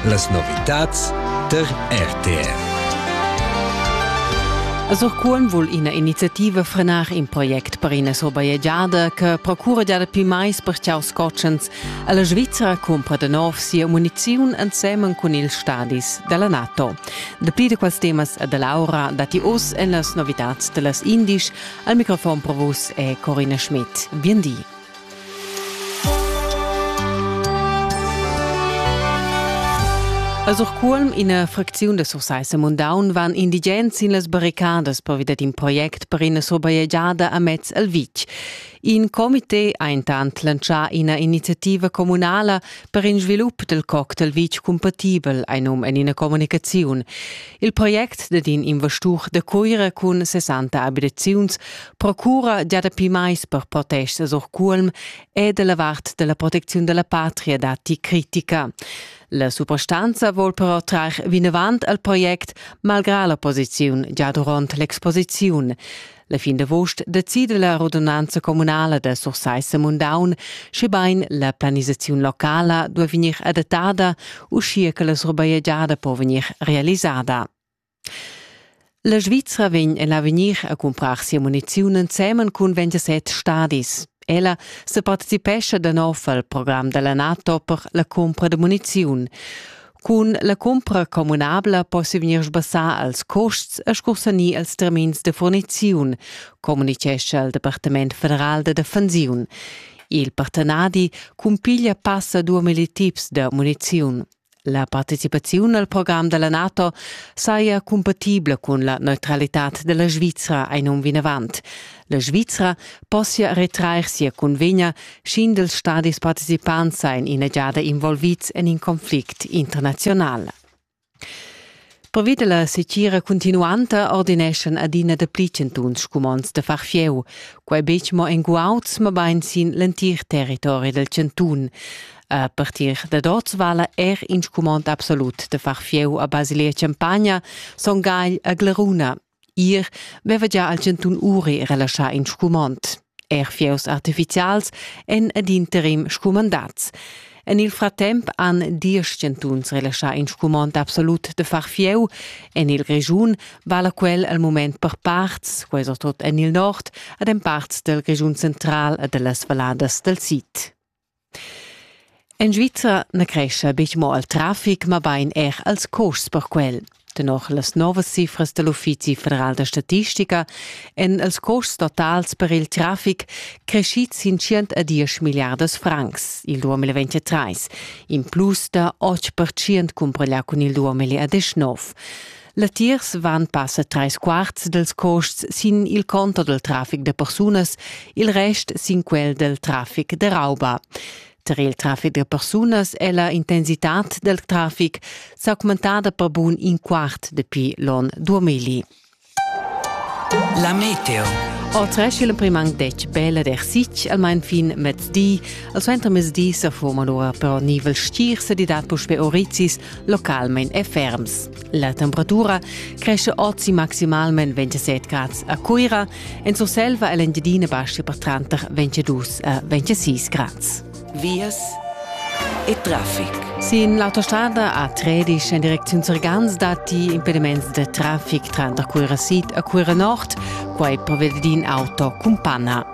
Las novitads der RTR. Surcuolm vul ina iniziativa frenar in project per ina surbajegiada che procura dapi mais per ciaus cotschens. La Svizzera cumpra da nov sia muniziun ensemen cun ils stadis della NATO. Dapli di quels temas da Laura dati us en las novitads dellas Indisch. Al microfon pro vus è Corina Schmidt. Bien di. A Surcuolm, ina fracziun da Sursaissa Mundaun, van indigens sin las barricadas pervi dad in project per ina surbajegiada amez el vitg. In comité ha intant lantschà ina iniziativa communala per in svilup dal coc dal vitg cumpatibel, ein um en ina communicaziun. Il project dad in investur da Cuira cun 60 abitaziuns procura gia dapi mais per protestas or Cuolm e dalla vart della protecziun della patria datti critica. La suprastanza vuol però trar vinavant al project, malgrà la posiziun già durant l'exposiziun. La fin d'avost decida la radunanza communala da Sursaissa Mundaun, schebain la planisaziun locala duai vegnir adattada, uschia che la surbajegiada po vegnir realisada. La Svizra vegn en l'avegnir a cumprar sia muniziun ensemen cun 27 stadis. Ella se partecipescha da nov al program della NATO per la compra da muniziun. Cun la cumpra communabla possi vegnir sbassà als custs e scursanir als termins de furniziun, communicescha il Departament federal da defensiun. Il partenadi cumpiglia passa duemila tips da muniziun. La participaziun al program della NATO saja compatibla cun la neutralitad della Svizra ein um vinavant. La Svizra possia retrair sia cunvegna, sch'indels stadis participants sajan ina giada involvids en in conflict internaziunal. Pervi la secira cuntinuanta ordineschan adina dapli chantuns scumonds da far fieu, quai betg mo en guauds, mabain sin l'entir territori dal chantun. A partir dad oz vala er in scumond absolut da far fieu a Basilia Champagna, Son Gagl a Gleruna. Ir veva gia al chantun Uri relaschà in scumond. Er fieus artificials èn ad interim scumandats. En il fratemp han diesch chantuns relaschà in scumond absolut de far fieu. En il Grischun vala quel al moment per parts, questo tot en il nord, ad en parts del Grischun central e dellas valladas del sid. En Svizra na crescha betg mo al traffic, mabain er als custs per quel. Tenor las novas cifras da l'Uffizi federal da statistica èn els custs totals per il traffic creschids sin tschient a diesch milliardas francs il 2023, in plus da otg percent cumparà cun il 2019. Latiers van passa trais quarts dels costs sin il conto del trafic de persunas, il rest sin quel del trafic de rauba. Tar il trafic de persunas è la intensitat del trafic s'augmentada per bun in quart dapi l'on 2000. La meteo. Oltresch il primang dec bella der sich almain fin mezdi, al suenter mezdi se foma lora però nivel stier se di dat puspe oricis localmein e ferms. La temperatura cresce ozi maximalmain 27 grads a Cuira, en Surselva e l'Engiadina bascia per tranter 22 e 26 grads. Vias e traffic. Sin l'autostrada a Tredisch en direcziun Surgans datti impediments da traffic tranter Cuira Sid e Cuira Nord, quai per in auto cun panna.